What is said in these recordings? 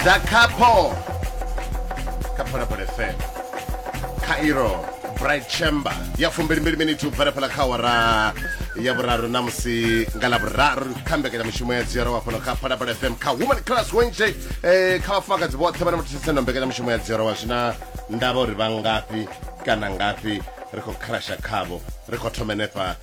dza khapho kha phalaphala fm cairo bright chamber ya fumbilimbili miniti u bvela fhala kha awara ya vhuraru na musi nga ḽa vhuraru kha mbekanyamushumo ya dzioro wa fhano kha phalaphala fm kha woman class wednesday eh, kha vhafumakadzi vhoṱhe vhane vha thetshelesana mbekanyamushumo ya dzioro wa zwina ndavha uri vha ngafhi kana ngafhi ri khou crasha khavho ri khou thoma henefha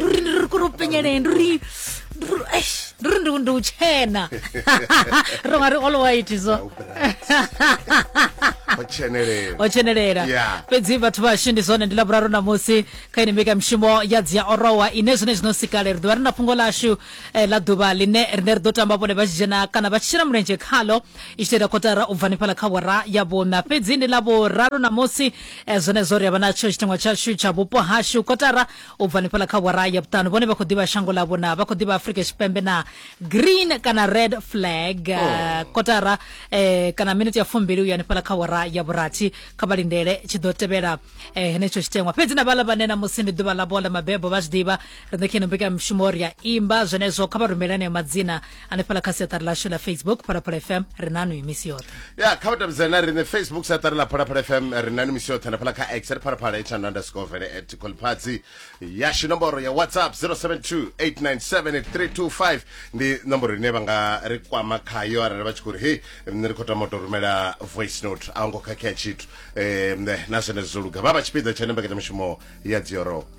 ruri ndi ri kuri u penyeleni ruri ruri ndi ndi u tshena ro nga ri all white so otshenelela o tshenelela Yeah. fhedzi vhathu vhashu ndi zwone ndi lavhuraru ṋamusi kha ine mbekamishumo ya dzi ya orowa ine zwine zwino sikale ri ḓovha ri na fhungo lashu eh, ḽa ḓuvha ḽine rine ri ḓo tamba vhone vha tshi dzhena kana vha tshi shela mulenzhe khalo i tshi ita kotara u bva nifhala kha wara ya vhuna fhedzi ndi ḽa vhuraru ṋamusi e zwenezwo ri a vha natsho tshiteṅwa tshashu tsha vhupo hashu kotara u bva nifhala kha wara ya vhuṱanu vhone vha khou ḓivha shango ḽavho na vha khou ḓivha afrika tshipembe na green kana red flag eh, oh. kotara eh, kana miniti ya fumbili u ya nifhala kha wara ya vhurathi kha vha lindele tshi ḓo tevhela eh, henetsho tshiteṅwa fhedzi na vhala vhane na musi ndi ḓuvha ḽavho ḽa mabebo vha zwi ḓivha ri ṋekheni mbekanya mushumo ri a imba zwenezwo kha vha rumele aneyo madzina hanefhala kha siaṱari lashu la facebook phalaphala fm ri nanu i misi yoṱhe ya kha vhatambizani na riṋe facebook siaṱari ḽa phalaphala fm ri nanu misi yoṱhe hanefhala kha x ri phalaphala itshano underscore vele at colpatsi yashu nomboro ya whatsapp 0728978325 ndi nomboro ine vha nga ri kwama khayo arali vha tshi khou ri hei nṋe ri khou tama u tou rumela voice note a hu ngo khakhea tshithu um na zwenezwo zwo luga vha vha tshipiḓa tsha ne mbekanyamushumo ya dziorowo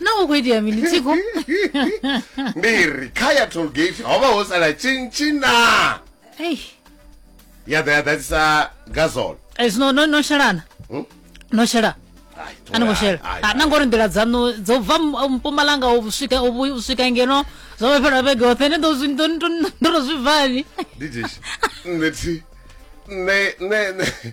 na hu khou itea mini tsiko ndi ri kha ya tollgate ho vha ho sala tshintshina ei ya ḓa ya ḓadzisa gazol ei, zwino no no shelana Hmm? no shela Ai, to- a ni ngo ai, shela ai, Ah, na ngori nḓila dzaṋu dzo bva m- uh, mpumalanga u swika u vhu- u swika ngeno zwo vha fhela vhege hoṱhe ne ndo zwi- ndo- ndo- ndo to zwi bvani ndi jeshi nṋe thi nṋe nṋe nṋe-